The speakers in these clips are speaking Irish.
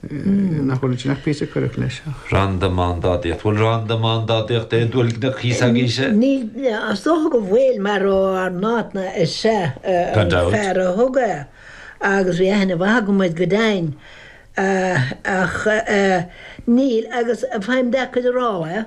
Nach bhfuil sin ach píosa coireach leis seo. Randamándádaíocht, bhfuil randamándádaíocht é dual gneach thíos agaibhse? Níl, as dócha go bhfuil, mar ó Ard na Caithne is ea an fear a thug é agus bhí aithne mhaith agam air go deimhin. Ach níl, agus faighim deacair a rá é.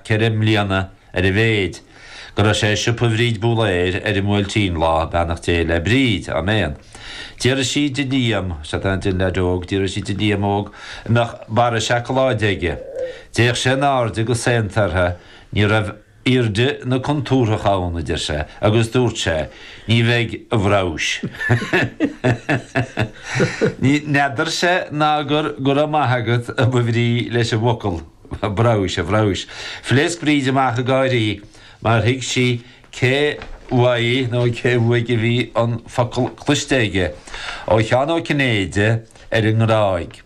ceithre mbliana ar a mhéid, go raibh sé i siopa Bhríd Búlaeir ar an mBuailtín, Lá, Beannacht Dé le Bríd, Áiméan. D'fhiafraigh sí de Liam, 'sé sin den leaid óg, d'fhiafraigh sí de Liam óg an mbeadh barra seacláide aige. D'fhéach sé in airde go saonta uirthi, ní raibh airde na contúrthach ann, a deir sé, agus dúirt sé, Ní bheidh, a bhrabhais. Ní, n'fheadair sé ná gur, go raibh maith agat, a ba bhrí leis an bhfocal. Bhrabhais, a bhrabhais. Phléasc Bríd amach ag gáirí mar thuig sí cé uaidh nó cé aige a bhí an focal cloiste aige, ó Sheán Ó Cinnéide ar an nGráig.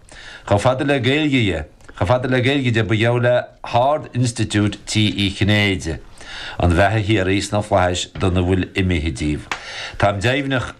Chomh fada le Gaeilge dhe, chomh fada le Gaeilge dhe, ba gheall le hArd Institiúid tigh Uí Chinnéide an bheatha shíoraí sna Flaithis dona bhfuil imithe díobh. Táim deimhneach.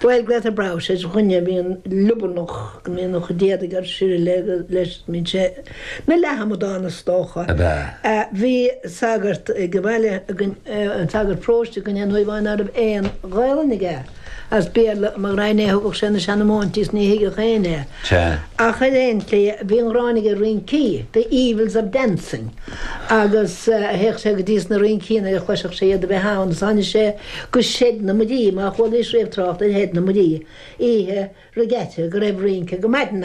Bhuel glaotar brabhas ar dhuine a bhíonn liobarnach go mbíonn a chuid éadaigh ar sileadh leis nó leathamadán is dócha. Bhí sagart ag an bhaile againn, sagart paróiste againn aon uair amháin ná raibh aon Ghaolainn aige as Béarla i gcónaí a thugadh sé na seanamóintí is ní thuigfeadh éinne é. Ach ar aon tslí, bhí an ghráin aige ar rincí, The Evils of Dancing agus théadh sé go dtí na rincí nuair a chloisfeadh sé iad a bheith ann agus tháinig sé Go Shed na Muirí, má chualaidh sibh trácht ar Shed na Muirí oíche regatta go raibh rince go maidin ann.